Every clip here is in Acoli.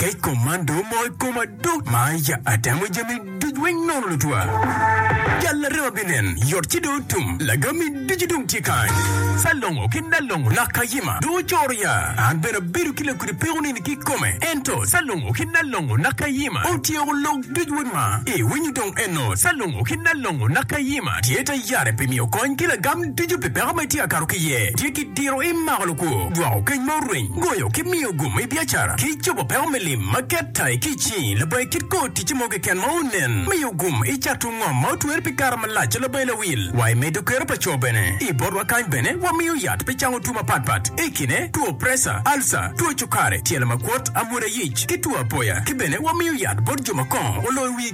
kec kom man dong omoko i koma duk ma aija atemo jami duc weng nono lutwa. Jal arema binen, yot ci dong otum, lagami ducu dong tye kany. Salongo ki Nalongo lak kayima dong ocoro ya, an bene abedo ki lakudi peko nini ki kome. Ento Salongo ki Nalongo lak kayima otyeko lok duc weng ma iwinyo dong eno Salongo ki Nalongo lak kayima tye ta yare pi miyo kony ki lagam ducu pi peko ma itye ka kato ki iye, tye ki diro imako lukwo, jwako keny ma orweny, goyo ki miyo Gumo i biacara ki cobo peko me lim ma ket tayi ki i cingi labongi kit kor ticce mo keken ma onen. Miyo gum i cato ngom ma otwer pi kare malac ca labongi lawil. Wa i medo kero pa co bene. I botwa kany bene wamiyo yat pi cango two mapat pat i kine two presa, alca, two cukari, tyelo makwot, amwoda yic ki two apoya. Ki bene wamiyo yat bot jo ma kongo oloyo wigi.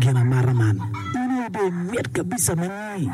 Gin amata man. In aye be mit kabisa mani.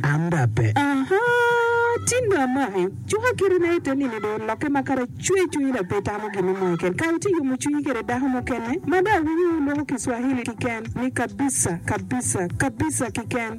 An da pe. Aha, tin do amaki. Cuka kite na ite nini do oloke ma kara cwer cwinyi da pe itamo gin mo keken. Kara ite yomo cwinyi kede dako mukene ma da awinyo wuloko kiswahili kiken ni kabisa, kabisa, kabisa kiken.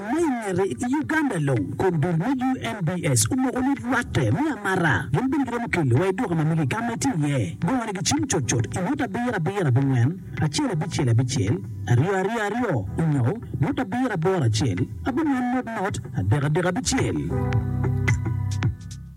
Ma i ngete, i Uganda long, kom dul me UNBS omoko ni rwatte me amara gin bene giromo kelo wa i duka ma mege ka ma itye iye. Gongone gicim cut cut i ngut abiro abiro abongwen, acel abicel abicel, aryo aryo aryo, onyo ngut abiro aboro acel, abongwen not not, adek adek abicel.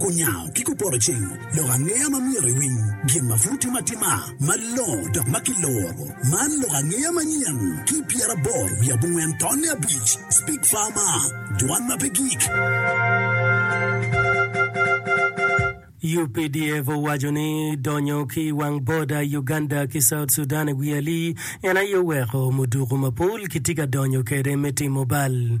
Kunyango ki kuporo cing, lok angeya ma myero iwiny, gin ma pud timo atima, malongo dok ma kiloro. Man lok angeya manyen ki pyeraboro wiye abongwen tonne abic, Speak Farmer, Dwan ma pe gik. Updf owaco ni donyo ki i wang boda Uganda ki South Sudan i wi alii en aye oweko muduku mapol kitye ka donyo kwede me timo bal.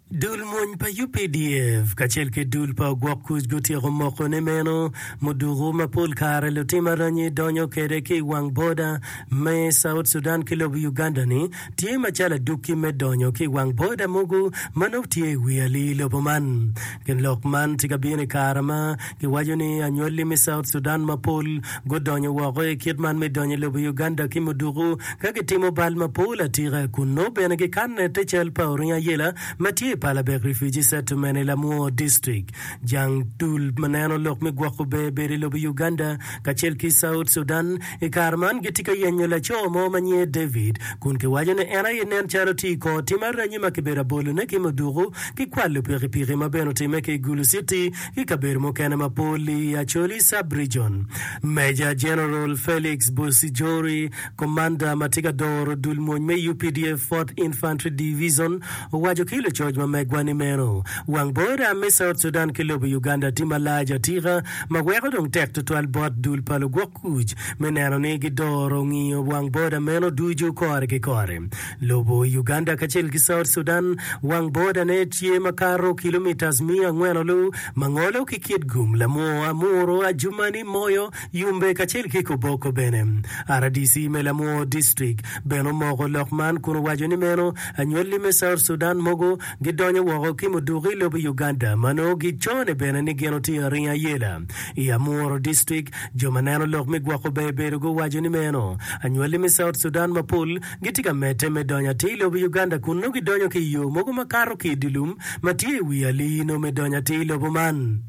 Dul mony pa UPDF kacel ki dul pa ogwok kuc gutyeko mokone meno muduku ma pol kare lutim aranyi donyo kwede ki i wang boda me South Sudan ki lobo Uganda-ni tye macalo adukki me donyo ki i wang boda mogo ma nongo tye i wi alii lobo man. Gin lok man tye ka bino i kare ma Giwaco ni anywali me South Sudan mapol gudonyo woko i kit man me donyo i lobo Uganda ki muduku ka gitimo bal mapol atika. Kunnu bene gikanne te cal pa oringo ayela ma tye i Palabek Refugee Settlement i Lamwo District. Jang dul ma neno lok me gwoko ber bedo i lobo Uganda kacel ki South Sudan i kare man gitye ka yenyo laco mo ma nyinge David kun giwaco ni en aye nen calo tye i kor tim aranyi ma kibedo abolone ki muduku ki kwalo pikipiki ma bene otimme ki i Gulu City Ki i kabedo mukene ma pol i Acholi Sub-Region, Meja Jeneral Felix Busijori, komanda ma tye ka doro dul mwony me updf Fourth Infantry Divizon, owaco ki lucoc ma megwa ni meno wang boda me South Sudan ki lobo Uganda tye malac atika ma weko dong tek tutwal bot dul pa lugwok kuc me neno ni gidoro ngiyo wang boda meno ducu kore ki kore. Lobo Uganda kacel ki South Sudan wang bodane tye makato kilomitas miya angwen lu ma ngolo ki Kitgum, Lamur, Amuru, Adjumani, Moyo, Yumbe kacel ki Koboko bene. Rdc me Lamur District bene omoko lok man kun owaco ni meno anywali me South Sudan mogo gidonyo woko ki muduki lobo Uganda ma nongo gicone bene ni gin otingo aringa ayela i Amuru District. Jo ma neno lok me gwoko ber bedo guwaco ni meno anywali me South Sudan mapol gitye ka medde me donyo atir i lobo Uganda kun nongo gidonyo ki i yo mogo ma kato ki i dye lum ma tye i wi alii-nu me donyo atir i lobo man.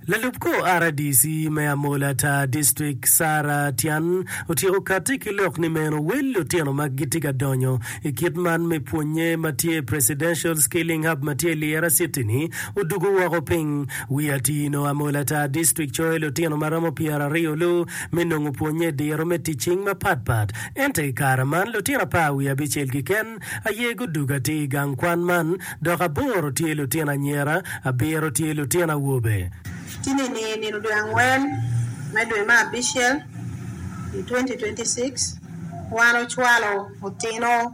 Lalub kor RDC me Amola Tar District, Sarah Tian, otyeko katti ki lok ni meno wel lutino ma gitye ka donyo i kit man me pwonnye ma tye i Presidential Skilling Hub ma tye i Lira City-ni odwogo woko piny. Wi atir-nu, Amola Tar District coyo lutino ma romo pyeraryo-lu me nongo pwonnye diro me tic cing mapat pat. Ento i kare man, lutino apar wiye abicel keken aye gudug atir i gang kwan man, dok aboro tye lutino anyira, abiro tye lutino awobe. Ci nino i nino dwe angwen me dwe me abicel i 2026, wan ocwalo otino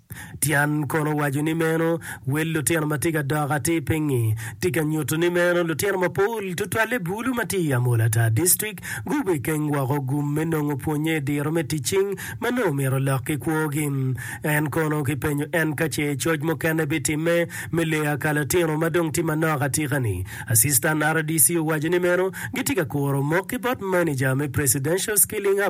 Tyan kono waco ni meno wel lutino ma tye ka dok atir pingngi tye ka nyuto ni meno lutino mapol tutwalle bulu ma tye i Amolatar District gubekeng woko gum me nongo pwonnye i diro me tic cing ma nongo myero olok ki kwogi. En kono kipenyo en ka ce coc mukene bitimme me leyo aka latino ma dong tye manok atika-ni, Assistant rdc owaco ni meno gitye ka kuro mok ki bot maneja me Presidential Skilling Hub,